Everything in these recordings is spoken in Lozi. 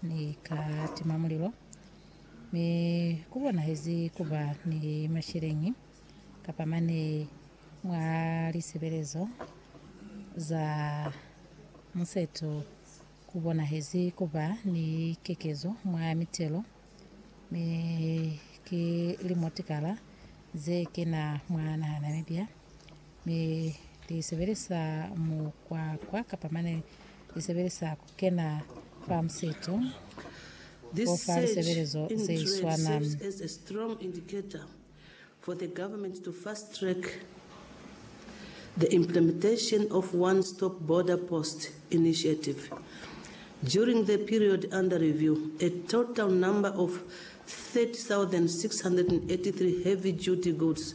Ni ka tima mulilo, mi ku bonahezi ku ba ni masheleñi kapa mane mwa lisebelezo za museto ku bonahezi ku ba ni kekezo mwa mitelo, mi ki limo tikala ze kena mwa naha Namibia. Mi li sebelisa mukwakwa kapa mane li sebelisa ku kena fa musito fo fa lisebelezo ze swana. for the government to fast track the implementation of one-stop border post initiative. During the period under review, a total number of 30,683 heavy-duty goods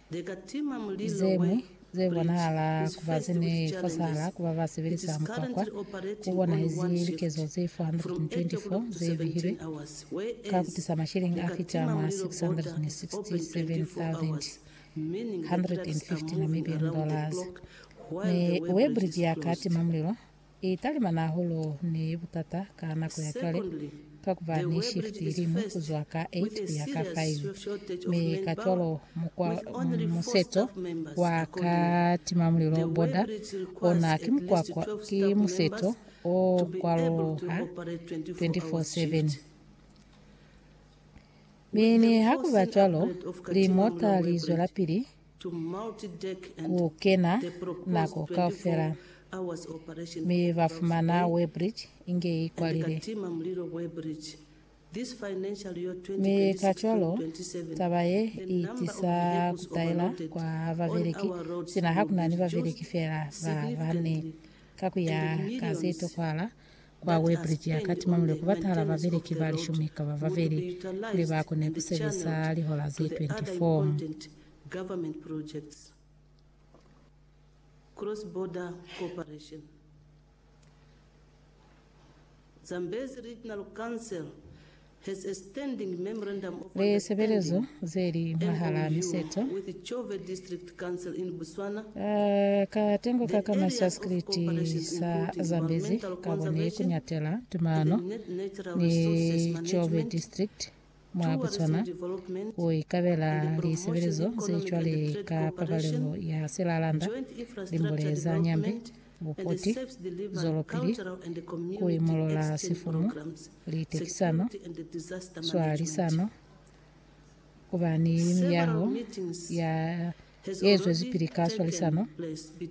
Ze ñwi ze bonahala ku ba ze ne fosahala ku ba ba sebelisa mukwakwa ku bonahezi likezo ze 424 ze bihilwe ka ku tisa masheleñi a fita mwa 667,150 Namibian dollars. Mi Weibridge ya ka tima mulilo I talimana hahulu ni butata ka nako ya cwale, ka ku ba ni shift i liñwi ku zwa ka eight ku ya ka five, mi kacwalo mukwa museto wa katimamulilo, border, ona ki mukwakwa, ki museto o kwaloha 24/7. Mi niha ku ba cwalo, limota li zwelapili ku kena nako kaufela, mi ba fumana Weybridge inge i kwalile. Mi kacwalo, taba ye i tisa ku taela kwa babeleki, sina ha ku na ni babeleki feela ba bane. Ka ku ya ka se tokwahala, Kwa Weybridge ya ka Timamule ku batahala babeleki ba lishumi kaba babeli kuli ba kone ku sebeza lihola ze 24. Lisebelezo zeli mwahalaa miseto ka tengoka ka masaskriti sa Zambezi kabo ni kunyatela tumano ni Tshove District mwa Botswana ku ikabela lisebelezo ze cwale ka pabalelo ya silalanda, limbule za nyambe, Bukoti, zwelopili ku imolola sifumu, litekisano, swalisano, ku ba ni miyaho ya ye zwezipili ka swalisano,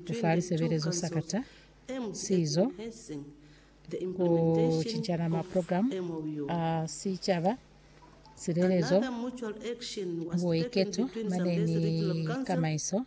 ku fa lisebelezo sakata, sizo, ku cincana maprogramu a sicaba, silelezo, buiketo mane ni kamaiso.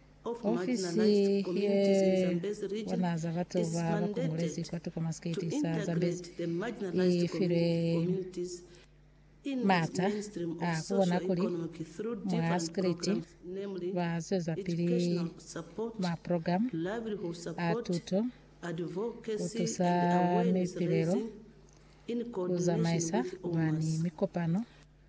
Ofisi ye bona za batu ba ba kongolezi kwa tuku mwa sikiti sa Zambezi i filwe maata a ku bona kuli mwa sikiliti ba zwezapili maprogramu a tuto, ku tusa mipilelo, ku zamaisa mwa ni mikopano,